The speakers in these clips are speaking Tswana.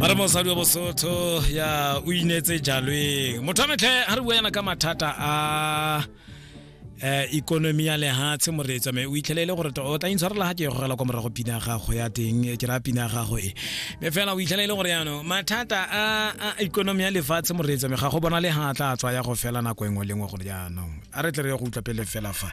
ba re mosadi wa bosotho ya o inetse jalweng motho wa metlhe ga re bua yana ka mathata a um ikonomi ya lehatshe moreetsa me o itlhele e le gore to- o tla intshwarela ga ke gogela kwa morago pina ya gago ya teng eh, ke raya pina ya gago e me fela o itlhele e le gore yano mathata a a ikonomi ya lefatshe moreetsa me ga go bona le ga a tla tswa ya go fela nako engwe le engwe gore jaanong a re tle re ye go utlwa pele fela fa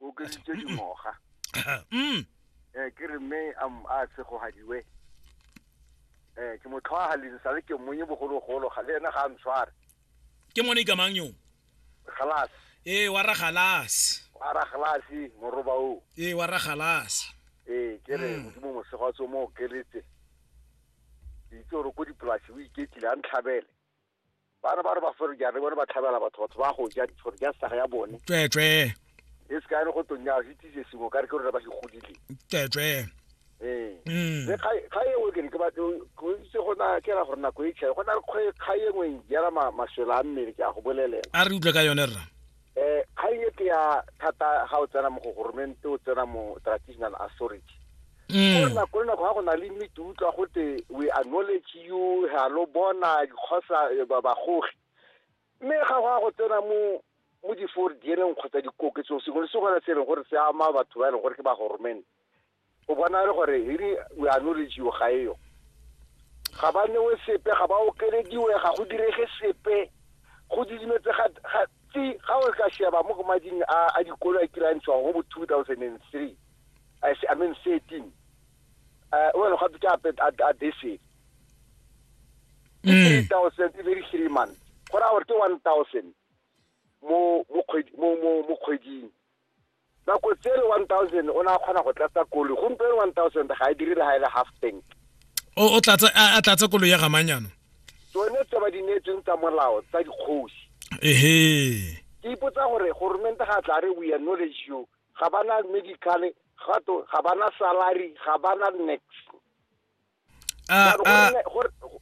o okeditse dingwaga mm eh ke re mme a m- a segogadiwe eh ke motlhwaga le sa le ke mmonye bogologolo ga le ena ga a ntshware ke mone ikamang yo galase ee wa ra galase a ra galase moroba o ee wa ra galase ee ke re Mm. modimo mosego wa tso mo okeletse itse gore ko dipolasi o iketlile a ntlhabele ba re ba re ba fere jare bone ba tlhabela batho batho ba go ja gore ja saga ya bone tsweetswee e se kae go tonya se tise sengwe ka re ke rona ba se godile tsweetswee ee mm. le ga e o kere ke ba go itse go na ke ra gore nako e tšhae go na le kgae engwe jela maswela a mmele ke a go bolelela a re utlwe ka yone rra eh kgang e ke ya thata ga o tsena mo go goromente o tsena mo traditional authority mm. nako le nako ga go na le mme ke utlwa gote we acknowledge you ga lo bona dikgosa eh, bagogi mme ga go ya go tsena mo mo di-four diereng kgotsa dikoketsong sengwe le sengwe se e leng gore se ama batho ba e leng gore ke ba goromente o bona le gore really we are knowledge yo ga eyo ga ba newe sepe ga ba okelediwe ga go direge sepe go didimetse ga tsi ga o ka sheba mo go mading a a dikolo a kirantshwa go bo 2003 i i mean 13 uh wena ga bitsa ape a dese 3000 mm. very three months go ra gore ke 1000 mo mo kgwedi mo mo mo kgweding nako tsele one thousand o ne a kgona go tlatsa koloi gompieno one thousand ga e dire le ga e le half tank o tlatsa a tlatsa koloi ya gamanyano tsone tse ba di neetsweng tsa molao tsa dikgosi ehe ke ipotsa gore goromente ga tla re we acknowledge you ga ba na medical gato ga ba na salary ga ba na next